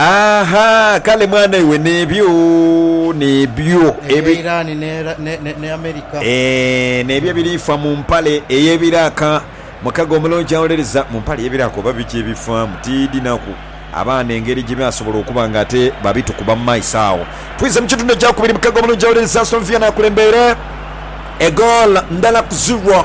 Aha, kale mwana iwe n'ebyo, n'ebyo. Ebya Iran ne, ne America. Eeh, n'ebyo ebirifa mu mpale ey'ebiraaka. Mukago omulungi awolereza. Mu mpale ey'ebiraaka oba biki ebifaamu? Tiidhi naku. Abaana engeri gye baasobola okuba nga ate babitukuba mu maiso agho. Twidha mu kitundu ekyakubiri. Mukago omulungi awolereza. Aston Villa n'akulembeire egoolo ndala ku ziro.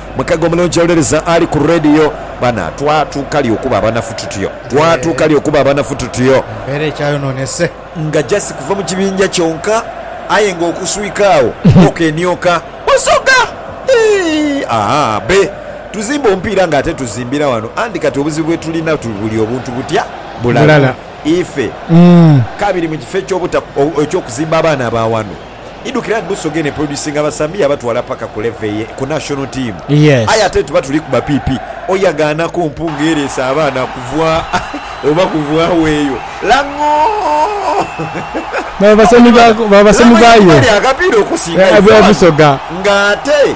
Mukago omulungi awolereza ali ku radio. Bana, twatuuka li okuba abanafu tutyo? Twatuuka li okuba abanafu tutyo? Embeera ekyayonoonese. Nga just kuva mu kibinja kyonka, aye nga okuswika agho okenioka. Busoga! Eeh! Aa! Be! Tuzimba omupiira nga ate tuzimbira wano anti kati obuzibu bwe tulina tu buli obuntu butya? Bulala. Ife. Ka biri mu kifo eky'obuta, eky'okuzimba abaana ba wano. idhukira nti Busoga eno eproducinga abasambi yabatwala paka ku level eye ku national team aye ate tuba tuli kuba pipi oyo agaanaku mpunga ereese abaana kuva oba kuvagho eyo Lang'oo. Baba basemi bayo e Busoga. Nga ate.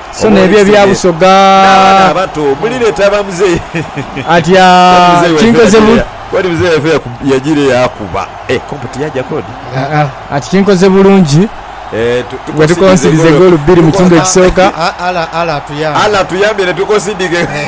So n'ebyo ebya Busoga. N'abaana abato mulireeta ba Muzei. Ati, Aa, kinkoze bu. Kodi Muzei waife yajiire yaakuba. Eh, Kompo tiyaja kodi? Aa, ati kinkoze bulungi bwe tukonsidize goolo bbiri mu kitundu ekisooka. Allah atuyambye ne tukonsidinga egoolo.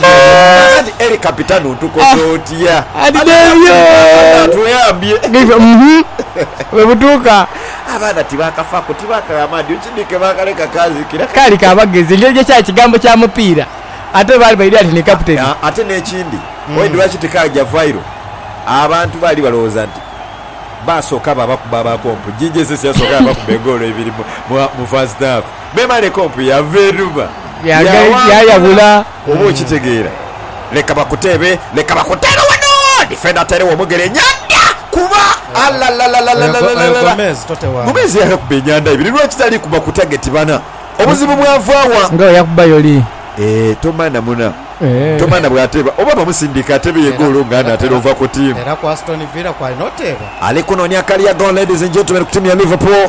Kakati Eli Kapitano tukole otya? Abaana tibakafaaku, tibakagha amaadhi. Okidhike baakaleka kaazikira. Kaali ka bagezi engeri gye kyali kigambo kya mupiira ate baali baidhi ati ni kaputeni. Ate n'ekindi, oidhi lwaki tikaagya viral? Abantu baali balowooza nti baasooka baabakuba abakompo. Gigi esisi yasooka yaabakuba egoolo ibiri mu first half. Bw'eba leka ompu yava eruba yaawangula. Oba okitegeera? Leka bakuteebe, leka bakuteebe wano! Difenda atairegho omugere nyanda kuba! Alalalalalalalala! Gomez yaakuba enyanda ibiri lwaki tali kuba ku tageti bana? Obuzibu bwava wa? Nga bwe yakuba yoli. Eeh, Tomana muna. Tomana bw'ateeba oba bamusindika ateebe ye goolo nga anaatera ova ku tiimu. Ali kunoonia kaliya goolo ladies and gentlemen ku tiimu ya Liverpool.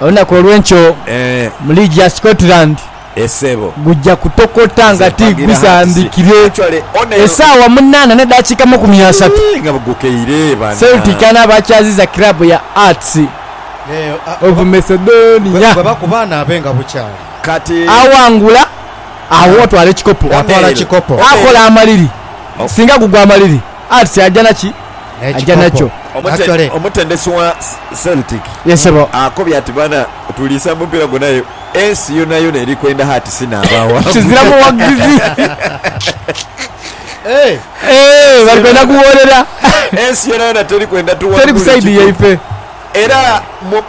Olunaku olw'enkyo mu liigi ya Scotland gujja kutokota nga ti gusambikire. Esaawa munaana n'edhakiika amakumi asatu, Celtic anaaba akyaziza kiraabu ya Hearts of Macedonia. Awangula agho atwala ekikopo. Akola amaliri. Singa gugwa amaliri, Hearts aja na ki? aja nakyo. Omute, omutendesi wa Celtic akobye ati, Bana, tuliisa mu mupiira gwona aye ensi yonayona eri kwenda hati si n'abawagu. Kizira muwagizi. Eeh, bali kwenda kuwoolera. Ensi yonayona teri kwenda tuwangule ekikompe. Era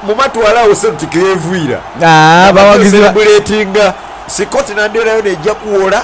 mu matwale agho Celtic gh'evuira, nga bali kweserebuletinga, Scotland yonayona eja kuwola.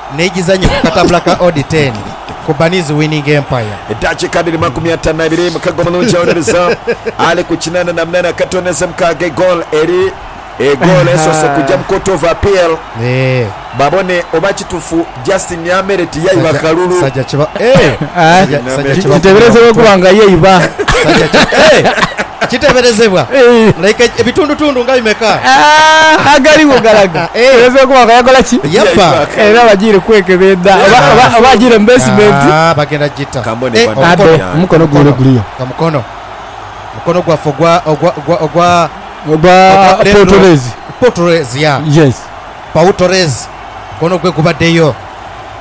n'egizanyo ku katabula ka odi teeni ku Bunny's Winning Empire. Eddakiika dhiri makumi ataanu na ibiri, Mukago mulungi awolereza ali ku kinaana na munaana akatoonheze mukaaga egoolo eri egoolo esoose kugya mu Court of Appeal babone oba kitufu Justin Nyamere tiyaiba kalulu. Kiteberezebwa okuba nga yaiba. Kiteeberezebwa like ebitundutundu nga bimeka? Agaligho galaga ayinza okuba nga yakola ki? Yafa. Era bagiire kwekebeedha oba oba agiire mu beesimenti. Bagenda gita. Ate omukono gwaibwe guliyo? Ka mukono. Mukono gwaffe ogwa ogwa ogwa ogwa Ogwa Paul Torres. Paul Torres, yeah. Yes. Paul Torres. Mukono gwe gubaddeyo.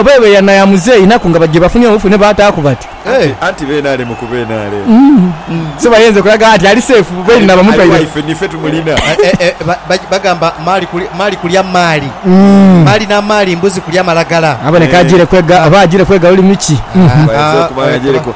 Oba eba eyana ya muzei inaku nga bajja bafunye obufu ne baataaku bati. Anti beene ali mu kuba enaale. So bayenze kulaga nti ali seefu beene na bamutwaire. Ife nife tumulina. Bagamba maali kulya maali. Maali na maali mbuzi kulya malagala. Aboneka ajiire kwega oba ajiire kwega lulimi ki? Bayinza okuba nga ajiire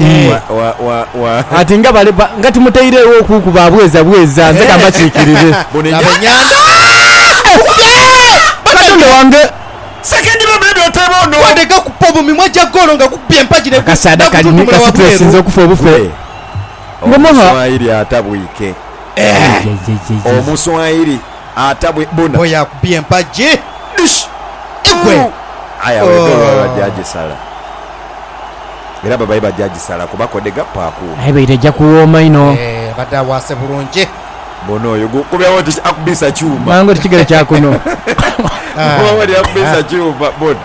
Eh. Wa- wa- wa- wa- Ati nga bale ba- nga timutairegho okukuba abweza bweza nze kambakikirire. Buno enyo- Abenyanda. Katonda wange Second ba baby oteba ono. Wadeka kupa mu mimwa gya golo nga gukubye empagi ne akasaada kali ni kasituleesi nze okufa obufe. Gwe. Ngomoha. Omuswayiri atabwike. Omuswayiri. Ata bwe bona. Boy akubye empagi. Dish! Egwe! Ooh! Aye awo edooru babe bajja Ooh! gisala. Era babaye bajja gisala kuba kodega paaku. Aye baita ejja kuwooma inho. Eeh abadde awaase bulungi. Bona oyo gu kubye awo oti akubiisa kyuma. Mangu oti kigere kya kuno. Oba wali akubiisa kyuma. Bona.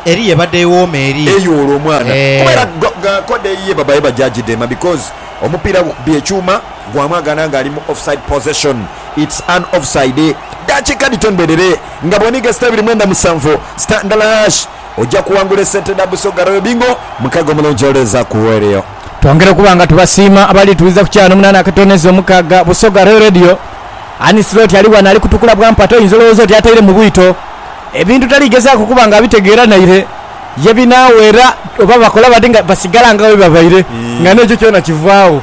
Eriyo ebadde ewooma eri. Eyoola omwana. Kuba era Eeh. ga ga kode eyiye babaye bajja gidema because omupiira gukubye ekyuma gwamwagana nga ali mu offside possession. It's an offside dakika dhito ndherere nga bwoniga sita ibiri mwenda musanvu sita ndala hash oja kuwangula esente dha Busoga Royal Bingo mukaga omulungi oleeza ku Weleo. Twongera okuba nga tubasiima abali tuwuliza ku kyana omunana akatono ezira omukaga Busoga Royal Radio. Anisloti ali ghano ali kutukula bwa mpata oyinza olowooza oti ataire mu bwito. Ebintu tali gezaku kuba nga abitegeera naire ye binaawera oba bakola bati nga basigala nga bwebabaire nga n'ekyo kyona kivaagho.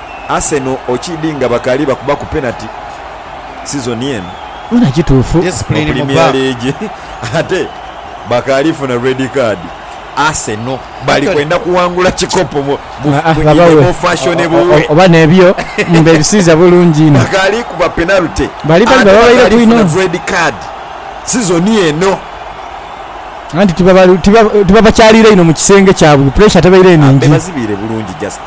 Arsenal okiidhi nga bakaali bakubaku penati sizoni eno mu Premier League ate bakaali funa red card. Arsenal bali kwenda kuwangula kikopo mu Guinea mu fashionable way. Bakaali kuba penalty ate bakaali funa red card sizoni eno. Bebazibiire bulungi just.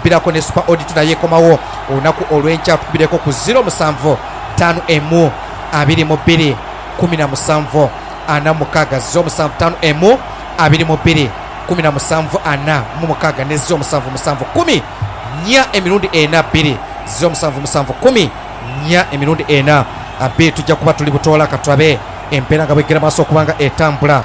Mpiraku ne Super Audit nayo ekomawo olunaku olwenkya. Tukubireku ku ziro musanvu tanu emu abiri mu bbiri kumi na musanvu ana mu mukaaga ziro musanvu tanu emu abiri mu bbiri kumi na musanvu ana mu mukaaga ne ziro musanvu musanvu kumi nya emirundi ena bbiri ziro musanvu musanvu kumi nya emirundi ena bbiri. Tujja kuba tuli butoola katulabe embeera nga bwegera maaso okuba nga etambula.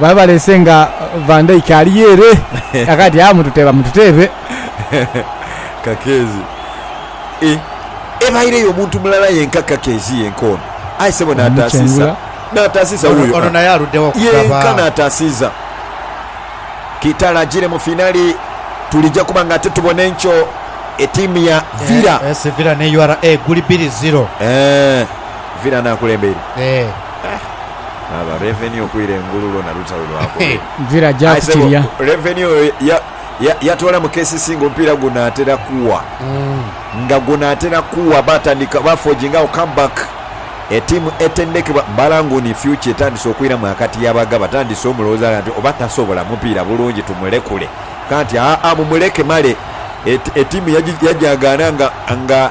Baba baleese nga Van Dijk ali yere aka ati, Haa mututeeba mututeebe. Kakeezi, Eeh, ebaireyo omuntu mulala yenka kakeezi yenka ono. Aye ssebo n'ataasiisa, n'ataasiisa wuuyo, aah, yenka n'ataasiiza. Kitara ajiire mu finale tulija kuba nga ate tubona enkyo etiimu ya Villa. AS Villa ne URA guli bbiri ziro. Eeh, Villa n'akulembeire. Eeh. Laba revenue okwira engulu lwona lutalo lwakube aye sebo revenue oyo yatwala mu kcc nga omupiira gunatera kuwa nga gunatera kuwa batandika ba forging agho come back etiimu etendekebwa balanguni future etandise okwiramu akati yabaga batandise omulowoza gha nti oba tasobola mupiira bulungi tumulekule kanti aa mumuleke male etiimu yagyagaana nga nga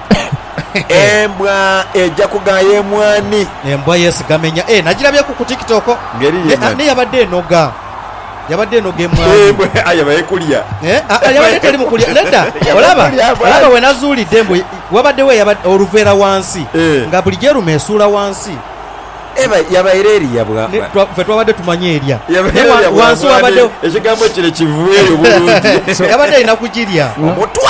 Embwa eja kugaaya emwani. Embwa yeesigama enya. Eeh, nagirabyeku ku TikTok. Ngeri ye mani. Naye yabadde enoga. Yabadde enoga emwani. Embwa aye eba ekulya. Eeh, aa, yabadde teri mu kulya. Nedda. Olaba? Olaba we nazuulidde mbu wabaddewo eyabadde oluveera wansi, nga buli gy'eruma esuula wansi. Eba yabaire erya bwa. Ffe twabadde tumanyi erya. Yabaire erya bwa mwaani. Ekigambo kire kiveeyo bulungi. So, yabadde erina kugirya. Omutwe!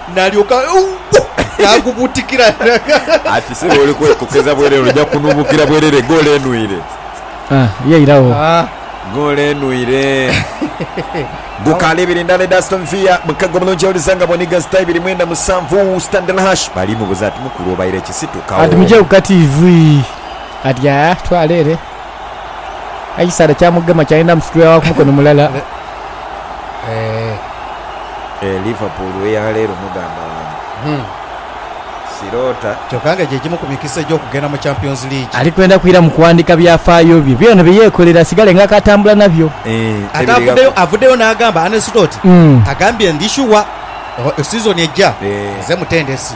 Nalyoka n'agubuutikira gha. Ati sebo oli kwekokeza bwerere oja kunubukira bwerere goolo enwire. Ah ye iragho. Goolo enwire. Gukaali ibiri ndala edha Aston Villa mukaga omulungi yawuliza nga boniga zita ibiri mwenda musanvu Standard Hush bali mubuza ati mukulu obaire kisitukawo. Ati mugyeku kati ivii. Ati aah twala ere. Aye ekisaadha kyamugema kyayenda musitula wa ku mukono mulala. Eeh Liverpool eya leero muganda wange siroota. Kyoka nga gyegimu ku mikisa egy'okugenda mu Champions League. Ali kwenda kwira mu kuwandika byafaayo bye byona bye yekolera asigale nga akatambula nabyo. Ate avuddeyo avuddeyo n'agamba Arne Slot agambye ndi shuwa season ejja nze mutendesi.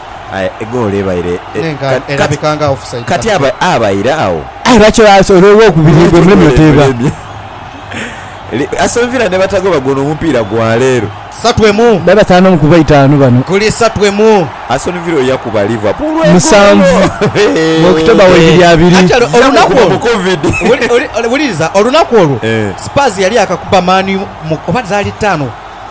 Aye egoolo ebaire e, kati abaire agho. Aye lwaki olwo olwokubiri gwe muleme oteeba? Aston Villa nebatagoba gwono omupiira gwa leero. Satu emu. Babe bataanu omu kubo eitaanu bano. Guli satu emu. Aston Villa yakuba Liverpool egoolo. Musanvu October waibiri abiri. Actually olunaku olwo, wuliriza, olunaku olwo Spurs yali yakakuba Man U mu, oba zaali ttaano?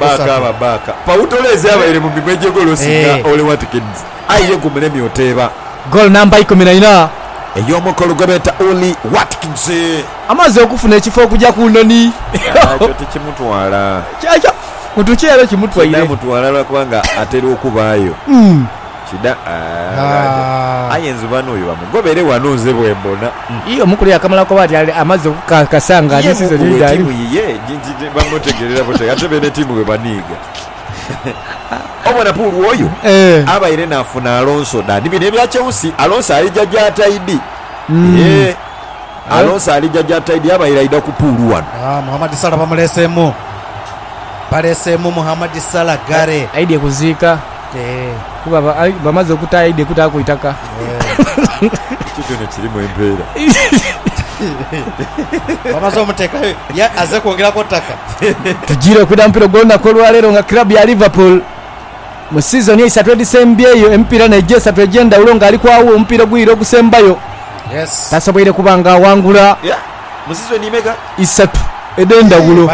Baakaaba baaka pa wutola ezabaire mu minwe gye golo singa Ole Watkins aye ye gumulemye oteeba. Ey'omukulu gwe beeta Ole Watkins. Ekyo tikimutwala. Kinaamutwala lwa kubanga atera okubaayo. Kida aghade aye nzubano oyo bamugobere ghano nze bwembona. Ii omu kule yakamala koba ati amaze okukakasa nga ni sizoni ye dhaali. Ye mukulu we tiimu yiye nti bamutegeerera butegha ate beene tiimu bwe baniiga. Obo Napuuli oyo abaire naafuna Alonso da ni bino ebya Chelsea. Alonso alija gya taidi. Eeh Alonso alija gya taidi abaire aidha ku puulu ghano. Aah Mohamed Salah bamuleeseemu. Baleeseemu Mohamed Salah ghale. Aidhie kuziika. Kuba bamaze okutaaya eidhe kutaaku itaka. Ekyo kyona kirimu empeera. Bamaze omuteekayo ye azze kwongeraku ttaka. Tujiire kwidha mupiira ogw'olunaku olwaleero nga club ya Liverpool mu season eisatu edhisembyeyo emipiira naigyo esatu egy'endhawulo nga ali ku awo omupiira ogwiire ogusembayo tasoboire kuba nga awangula isatu edh'endhawulo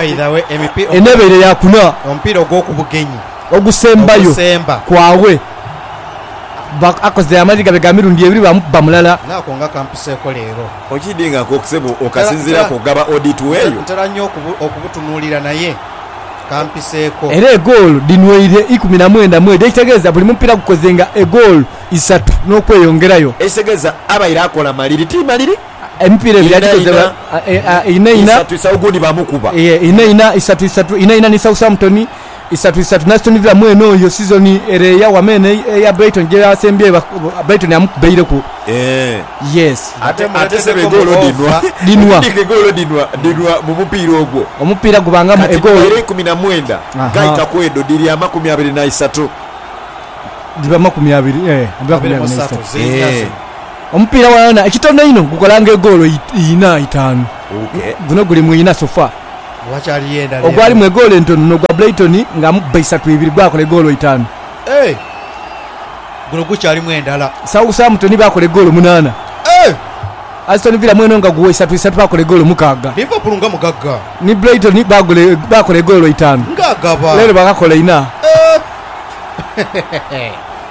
eno ebaire ya kuna. ogusembayo ogusemba. kwabwe. Ba, akoze amaadhi gabe ga mirundi ebiri baamukuba mulala. Nga ako nga kampiseeko leero. Okiidhi nga ako ssebo Ntera, okasinziiraku ntera, ogaba odi tu nte, eyo? ntera nnyo okubu, okubutunuulira, naye kampiseeko. Era egoolo dhinweire ikumi na mwenda mwedho, ekitegeeza buli mupiira gukoze nga egoolo isatu n'okweyongerayo. Ekitegeeza abaire akola maliri ti maliri. Emipiira ebiri Ina agikoze ina, ba, a, e, a, ina ina. isatu isa, ogundi baamukuba. Yee, ina ina, isatu isatu, ina ina ni Southampton. isatu isatu nazitunulira mwene oyo sizoni ere eya wama eno eya Brighton gyeyasembyeyo ba- Brighton yamukubeireku Eeh. yes Ate muleteseko Ate egoolo mu dhinwa. over. Dhinwa. Ekindi egoolo dhinwa dhinwa mu mupiira ogwo. omupiira gubangamu Kati egoolo dhibaire ikumi na mwenda Aha. gaita ku edho dhiri amakumi abiri na isatu. dhiba makumi abiri eh, dhiba makumi Abiri mu abiri satu, naisatu. ziri Eh. zino. omupiira wona ekitono einho gukolanga egoolo i- ina itaanu Okay. guno guli mu ina sofa ogwali mu egoolo entono n'ogwa Brighton nga amubba isatu ibiri gwakola egoolo itaanu. Southampton baakola egoolo munaana. Aston Villa mweno nga guwa isatu isatu baakola egoolo mukaaga. Ni Brighton baakola egoolo itaanu. Leero baakakola ina.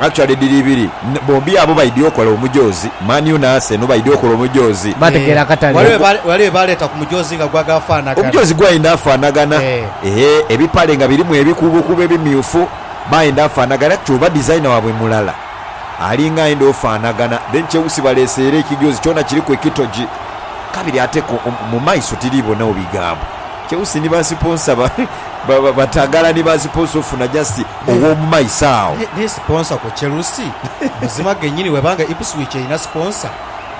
Actually dhiri ibiri bombi abo baidhi okola omujoozi Man U na Arsenal baidhi okola omujoozi. Bategeera akatale. Waliwo bye baleeta ku mujoozi nga gwa gaafaanagana. Omujoozi gwaidha afaanagana eeh ebipale nga birimu ebikuubokuubo ebimyufu baidha afaanagana kati oba designer waabwe mulala alinga aidha ofaanagana then Chelsea baleese era ekijoozi kyona kiriku ekitogi kabiri ate ko mu maiso tiri bonagho bigambo Chelsea ni ba siponsa ba ba ba Batagala ni ba siponsa ofuna just ow'omu maiso agho. Ni sponsor ku Chelsea? Muzima genyini bweba nga Ipswich erina sponsor,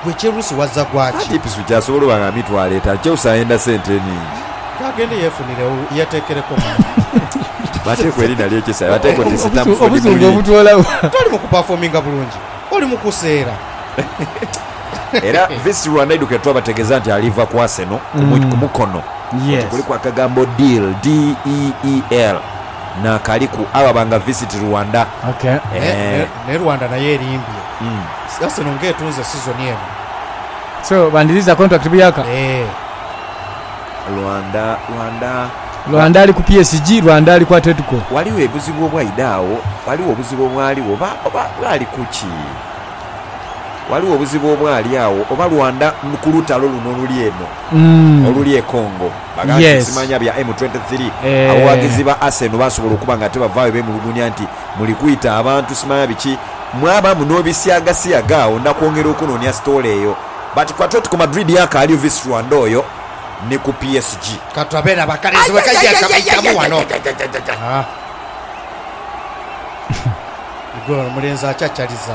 gwe Chelsea wazza gwaki? Anti Ipswich asobola oba nga mitwalo etaanu, Chelsea ayenda sente nhingi. Ke agende yefuniregho yetekereku mani. Mateeka erina lye Chelsea bateeka oti Stamford Bridge. Toli mu kuperforminga bulungi, oli mu kuseera. Era Visit Rwanda eidhukire twabategeeza nti aliva ku Arsenal ku Mukono. Oti kuliku akagambo deal, D-E-E-L. nakaliku aba banga visit Rwanda eeh. Naye Rwanda nayo erimbye Arsenal nga etunze season eno. So bandiriza contract buyaka. Eeh. Rwanda Rwanda. Rwanda ali ku PSG Rwanda ali ku Atletico. Waliwo ebuzibu obwaidha agho waliwo obuzibu obwaligho oba oba bwali kuki? Waliwo obuzibu obwali agho oba Rwanda kulutalo luno oluli eno oluli e Congo. Baagala nti Yes. nsimanya bya M23. Abawaagizi ba Arsenal baasobola okuba nga tibavaayo beemulugunya nti, Muli kwita abantu simanya biki, mwaba muno bisiagasiaga agho na kwongera okunoonia sitoola eyo. But ku Atletico Madrid yakaali Ovis Rwanda oyo ni ku PSG. Katulabe era bakalenzi bwe kaija kabaitamu wano. Ajajajajajaja. Aah. Igwe omulenzi akyachaliza.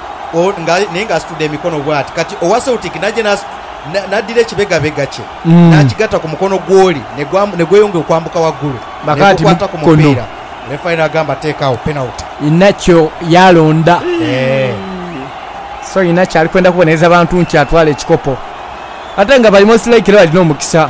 naye ng'asitudde emikono bw'ati. Kati owa Celtic naye n'addira ekibegabega kye n'akigatta ku mukono gw'oli ne gweyongera okwambuka waggulu ne gukwata ku mupiira. Lefali n'agamba teekagho penaliti. Inacio yaalonda. So Inacio ali kwenda kubonereza bantu nti atwale ekikopo ate nga bali most likely bali n'omukisa.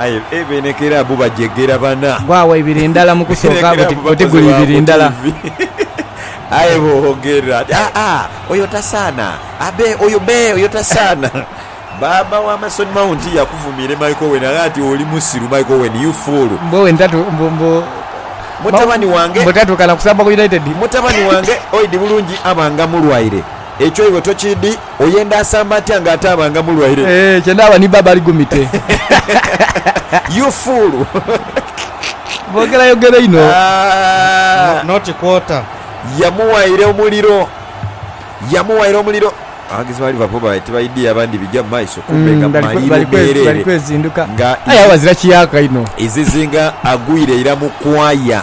Aye e beene kerabu bagyegera bana. Gwagho ibiri ndala mu kusooka oti guli ibiri ndala. Aye boogerera ati, Aa, oyo tasaana! Abe, oyo be, oyo tasaana! Baaba wa Mason Mount yakuvumiire Mike Owen agha ati, Oli musiru, Mike Owen, you fool! Mbu Owen tatu, mbu, mbu, Mutabani wange. mbu tatuuka na kusamba ku United. Mutabani wange oidhi bulungi aba nga mulwaire. Ekyo iwe tokidi, oyenda asamba atya nga ate abanga mulwaire? Eeh kye ndaba ni baba ali gumite. You fool. Bogera yogera inho. Aah. Not quarter. Yamuwaire omuliro. Yamuwaire omuliro. Abawagizi ba Liverpool babaire tibaidhia bandi bigya mu maiso kumbe nga maliru meereere nga izizinga agwire ira mu kwaya.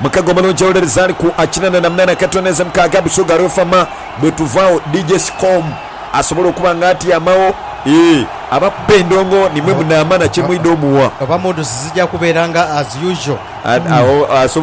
Mukaga omulungi awolereza ali ku akinana na munana kati oneze mukaga busoga rwefama bwetuvagho DJ Scom asobole okuba nga atyamagho eeh abakuba endongo nimwe munamana kyemwidha omuwa. Oba moods zija kubeera nga as usual. Agho asobola.